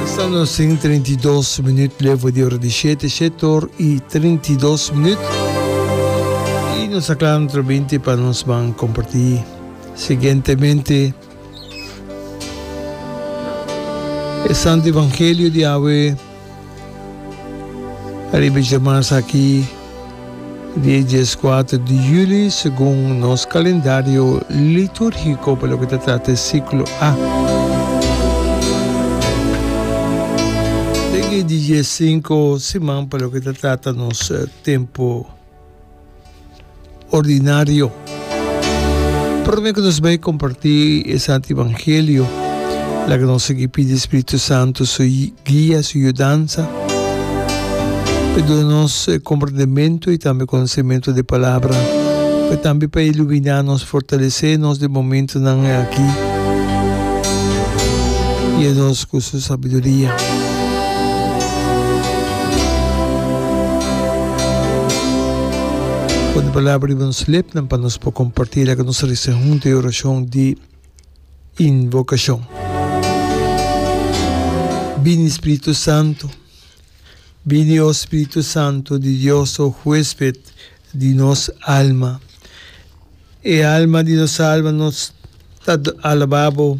Pasando sin 32 minut levo di ora di shete, shete or y 32 minut. Y nos a clara nuestro binti pa nos ban comparti siguientemente e Santo Evangelio di awe. Ariba e djamans aki di e dies kuater di juli, segun nos kalendario litúrgiko pa loke ta trata e siklo A. Den e di dies sinku siman pa loke ta trata nos tempu. ordinario. Prome cu nos bay comparti e Santo Evangelio, laga nos sigui pidi Espiritu Santo su guia, su yudansa, pa duna nos comprendimento y tambe conocimento di e Palabra, pero tambe pa ilumina nos, fortalece nos den momentonan aki. ku su sabiduria. Pone palabra riba nos lepnan pa nos por kompartí loke nos a resibi huntu, e orashon di invokashon. Bini Spiritu Santu, bini o Spiritu Santu di Dios, o Huesped di nos alma. E alma di nos alma nos ta alaba bo.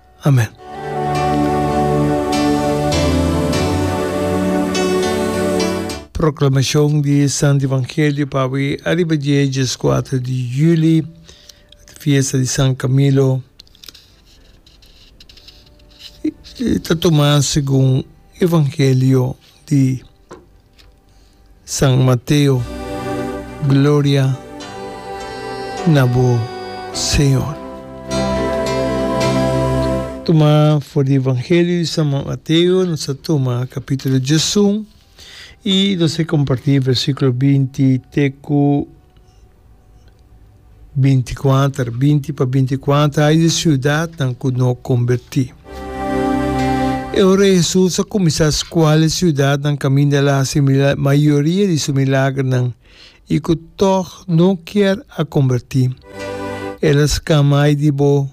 Amen. Proclamacion di e Santo Evangelio pawi ariba dje e djeskuater di juli, fiesta di San Camilo. E ta tuma segun Evangelio di. San Mateo, Gloria na bo Señor. Tuma for di Evangelio di San Mateo, nos a tuma capítulo djesun y nos a comparti versiculo binti te cu binticuater, binti pa binticuater hay di ciudadnan cu no comberti. E ora Jesus a cuminsa scuala e ciudadnan caminda el a haci mayoria di su milagernan y cu tog no kier a comberti. El a scama hay di bo,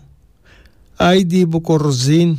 hay di bo Corazin!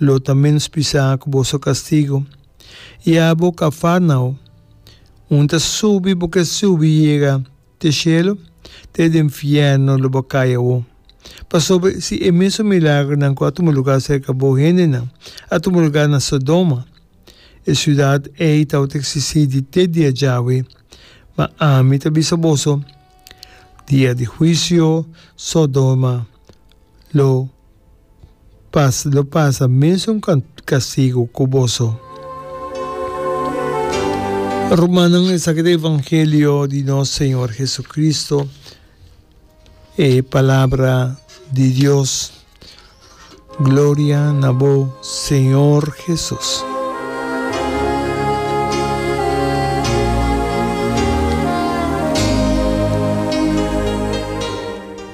Lo ta menos pisá ku boso kastigu, i abo Kafarnao, un ta subi bo ke subi yega te shelu, te den fièrnu lo bo kai awo. Pasobra si e mesun milagronan ku a tuma lugá serka bo hendenan a tuma lugá na Sodoma, e siudat ei tabata eksistí di te dia djawe. Ma ami ta bisa boso, dia di huisio Sodoma lo Pas lo pasa mesun castigo cu boso. Rumannan, esaki ta e evangelio di nos Señor Jesucristo, e Palabra di Dios. Gloria na bo, Señor Jesus.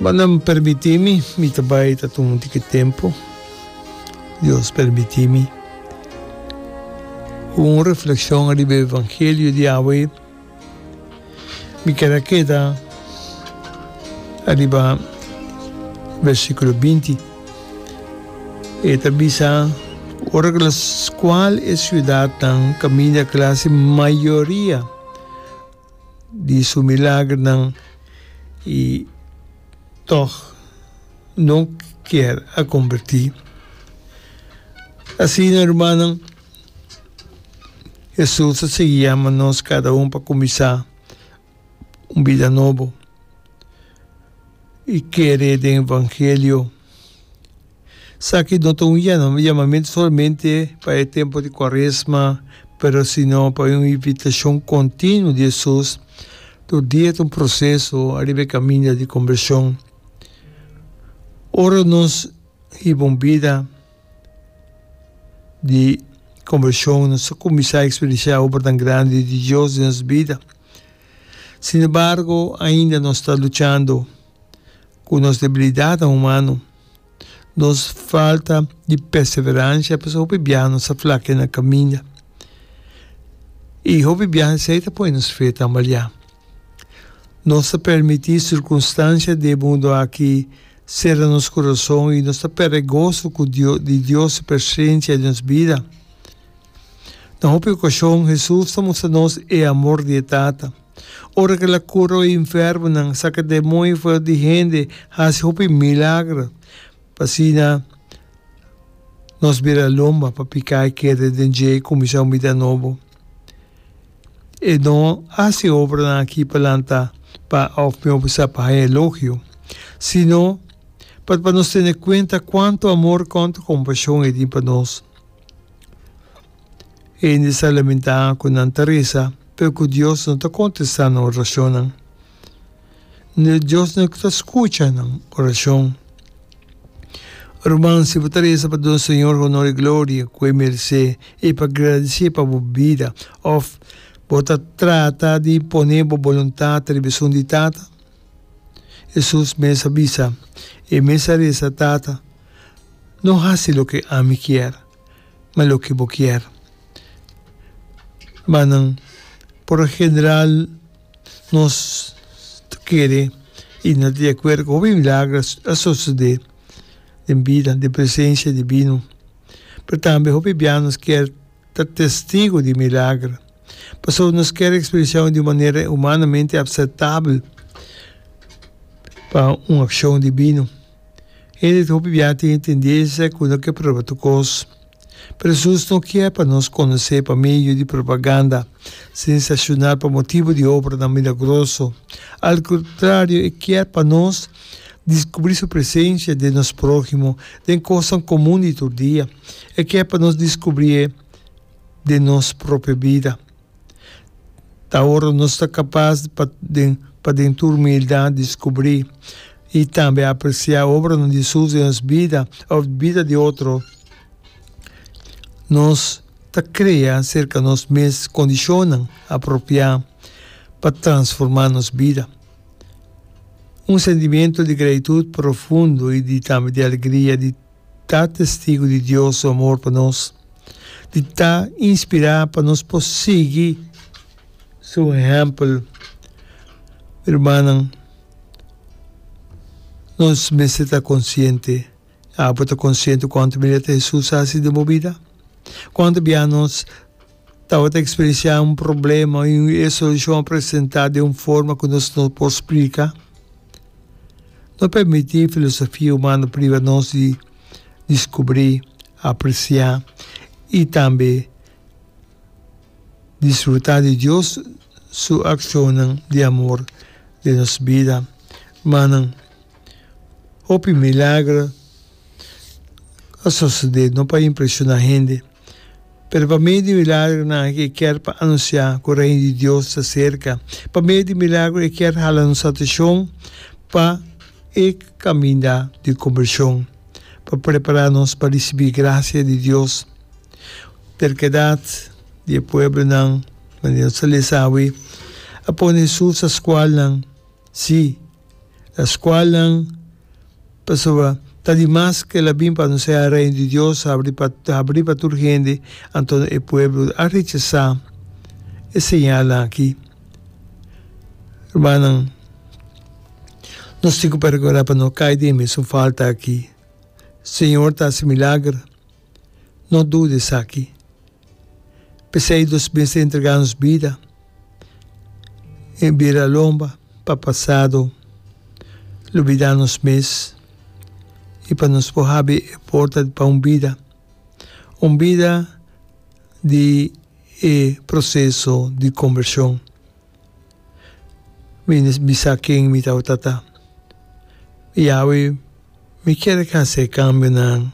Ma nan permití mi, mi ta bai ta tuma un tiki tempu, Dios permití mi, ku un reflekshon riba e evangelio di awa ei, mi kier a keda ariba versikulo binti, e ta bisa, ora ku las kual e siudatnan kaminda klase mayoria. di su milagernan i tòg no kier a kombertí. Asina rumannan, Hesus a sigui yama nos kada un pa kuminsá un bida nobo i kere den evangelio. Sa ki no ta un yamamentu solamente pa e tempu di Kuaresma, pero sino pa un invitashon kontinuo di Hesus. Tur dia ta un proseso ariba e kaminda di kombershon. Ora nos hiba un bida di kombershon, nos ta kuminsá eksperensiá obranan grandi di Dios den nos bida. Sinembargo, ainda nos ta luchando ku nos debilidatnan humano. Nos falta di perseverancia pasobra hopi biaha nos a flakia na caminda y hopi biaha esey ta pone nos fe tambalia. Nos ta permiti circunstancia di e mundo aki cera nos corazon y nos ta perde e gozo cu Dios di Dios su presencia den nos bida. Na hopi ocasion Hesus ta mustra nos e amor di e Tata. Ora ke el a kura e infermonan, saka e demoño for di hende, hasi hopi milagro, asina nos bira lomba pa piká e keda den dje i kuminsá un bida nobo. E no hasi e obranan akí palanta pa òf mihó sa pa haña elogio, sino pa nos tene kuenta kuantu amor, kònta kompashon e tin pa nos. Hende sa lamentá ku nan ta resa, pero ku Dios no ta kontestá nan orashonnan. N'e Dios no ta skucha nan orashon. Ruman, si bo ta resa pa duna Señor honor i gloria ku e meresé i pa gradisé pa bo bida, òf bo ta trata di impone bo boluntat riba esun di Tata? Hesus mes a bisa, E mes a resa, Tata, No hasi loke ami kier, ma loke bo kier. Manan, por lo general nos ta kere i no ta di akuerdo ku hopi milager a sosodé den bida, den presensia di binu. Pero tambe hopi bia nos kier ta testigu di milager. Pasobra nos kier ekspresianan di un manera humanamente apseptabel pa un akshon di binu. Hende ta hopi biaha tin tendensia ku no ke prueba tur kos. Pero Jesus no kier pa nos konos'é pa medio di propaganda, sensashonal pa motibu di obranan milagroso. Al kontrario, e kier pa nos diskubrí su presensia den nos próhimo, den kosnan komun di tur dia. E kier pa nos diskubrié den nos propio bida. Ta ora nos ta kapas pa den pa den tur humildat diskubrí i tambe apresiá obranan di Hesus den nos bida òf di bida di otro. Nos ta krea serka nos mes kondishonnan apropiá pa transformá nos bida. Un sentimentu di gratitut profundo i di tambe di alegria di. ta testigu di Dios su amor pa nos, di ta inspirá pa nos por sigui su ehèmpel. Mi rumannan, nos mester ta konsiente. Abo ta konsiente kuantu miná loke Hesus hasi den bo bida? Kuantu bia nos. Tabata experienciá un problema i e solucion a presentá den un forma cu nos no por splica. No permití filosofia humano priva nos di discubrí, apreciá i tambe disfrutá di Dios su accionnan di amor den nos bida. Manan, hopi milagro a sosodé no pa impresioná hende. Pero pa medio di milagronan aki e kier pa anunciá cu Reino di Dios ta cerca. Pa medio di milagro e kier hala nos atencion pa e caminda di conversion, pa prepará nos pa ricibí gracia di Dios. Terquedad di e pueblonan, manera nos a lesa awe, a pone Jesus a scualnan. Sí, e skualnan pasobra ta di mas ku el a bin pa anunsiá e Reino di Dios a abrí pa a abrí pa tur hende, anto e pueblo a rechesá e señalnan akí. Rumannan, nos tin ku pa rekordá pa no kai den e mesun falta akí. Señor ta hasi milager. No duda esaki. P'esei nos mester entregá nos bida den bira lomba pa pasado, lubidá nos mes i pa nos por habi e porta pa un bida, un bida di e proseso di kombershon. Mi no bisa ken mi tabata ta. I awe mi kier hasi e kambionan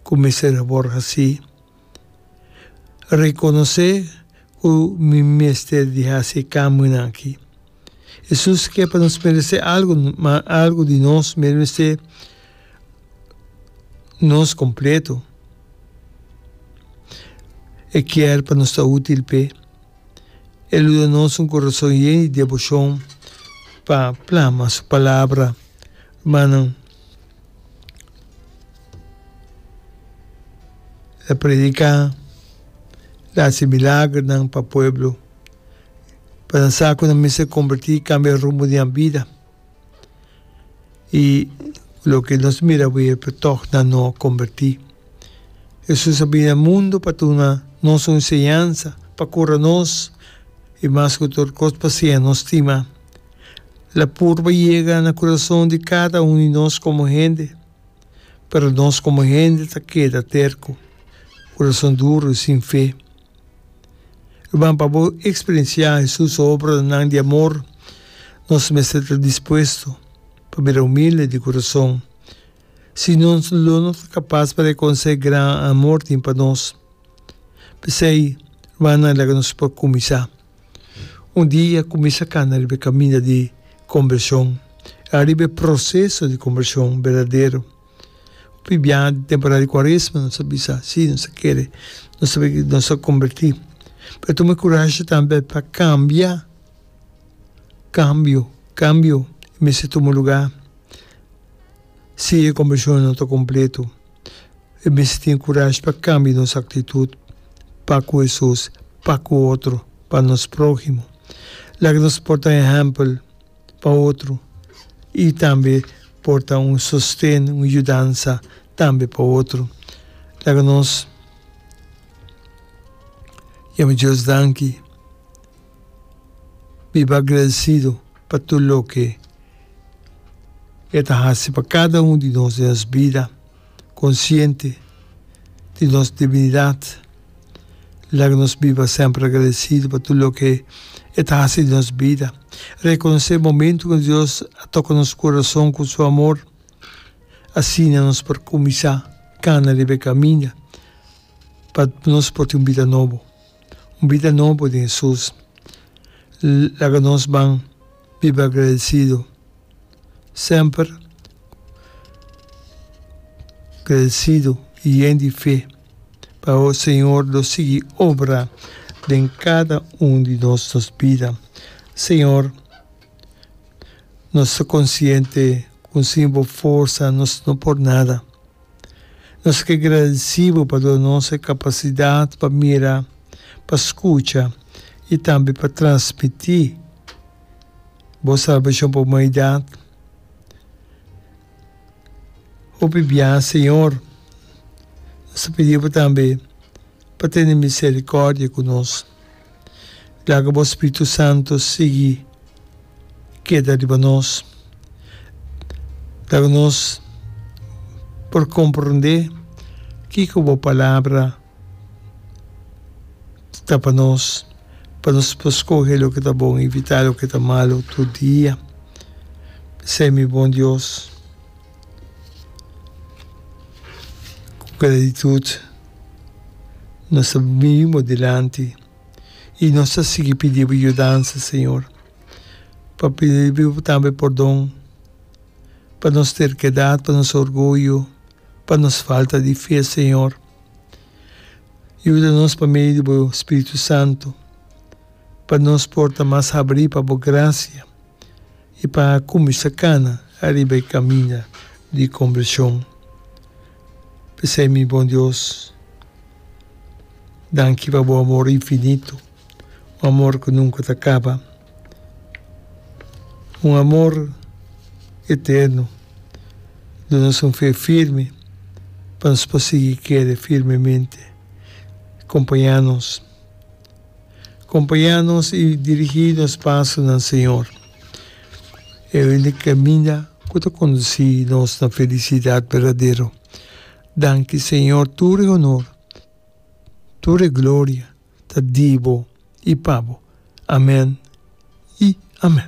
ku mester a por hasi. Rekonosé ku mi mester di hasi e kambionan aki. Hesus ke pa nos meresé algu, ma algu di nos meresé nos kompletu. E kier pa nos ta útil p'e. E lo da nos un corazon yen di devocion pa plama su palabra. Rumannan la predica, la haci milagronan pa pueblo pa nan sa cu nan mester converti y cambia rumbo di nan bida. y loke nos mira awe por tog nan no a comberti. Hesus a bini na mundo pa duna nos un enseñansa, pa cura nos y mas cu tur cos pa siña nos stima. La purba yega na curason di cada un di nos como hende, pero nos como hende ta keda terco, curason duro y sin fe. Ruman, pa bo eksperensiá Hesus su obranan di amor, nos mester ta dispuesto pa bira humilde di kurason. Si no, nos lo no ta kapas pa rekonosé gran amor tin pa nos. P'esei, rumannan, laga nos por kuminsá un dia kuminsá kana riba e kaminda di kombershon, ariba e proseso di kombershon berdadero. Biblia di temporada di Cuaresma nos ta bisa si nos ta kere, nos ta bini, nos ta komberti. Pero tuma e kurashi tambe pa kambia, kambio, kambio i mester tuma lugá. Si e kombershon no ta kompletu e mester tin kurashi pa kambia nos aktitut pa ku Hesus, pa ku otro, pa nos próhimo. Laga nos por ta ehèmpel. pa otro y tambe por ta un sosten, un yudansa tambe pa otro. Laga nos yama Dios danki, biba agradecido pa tur loke e ta haci pa cada un di nos den nos bida. konsiente di nos debilidat. Laga nos biba semper agradesido pa tur loke E ta hasi den nos bida. Rekonosé momentu kende Dios a toka nos kurason ku Su amor. Asina nos por kuminsá kana riba e kaminda pa nos por tin un bida nobo. un bida nobo den Hesus. Laga nos ban biba agradesido semper, agradesido i yen di fe pa awo Señor lo sigui obra den kada un di nos nos bida. Señor, nos ta konsiente ku sin bo forsa nos no por nada. Nos ke gradisí bo pa dor nos e kapasidat pa mira, pa skucha i tambe pa transmití Bo salbashon pa humanidat. Hopi biaha, Señor, nos ta pidi Bo tambe pa tene miserikòrdia ku nos. Laga bo Spiritu Santo sigui keda riba nos. Laga nos por komprendé kiko bo Palabra ta pa nos, pa nos por skohe loke ta bon i evitá loke ta malu tur dia. Esei mi bon Dios. Ku gratitud nos ta bini bo dilanti i nos ta sigui pidi bo yudansa, señor, pa pidi bo tambe pordon pa nos terkedat, pa nos orguyo, pa nos falta di fe, señor. Yuda nos pa medio di bo spiritu santu pa nos por ta mas habri pa bo grasia, I pa kuminsá kana ariba e kaminda di kombershon. P'esei mi Bon Dios, danki pa bo amor infinitu, un amor ku nunka ta kaba, un amor eternu. Duna nos un fe firme pa nos por sigui kere firmemente. Kompañá nos. Compaña nos i dirigi nos paso na Señor. E único caminda cu ta conduci nos na felicidad berdadero. Danki Señor tur e honor, tur e gloria ta di bo i pa bo. Amen i amen.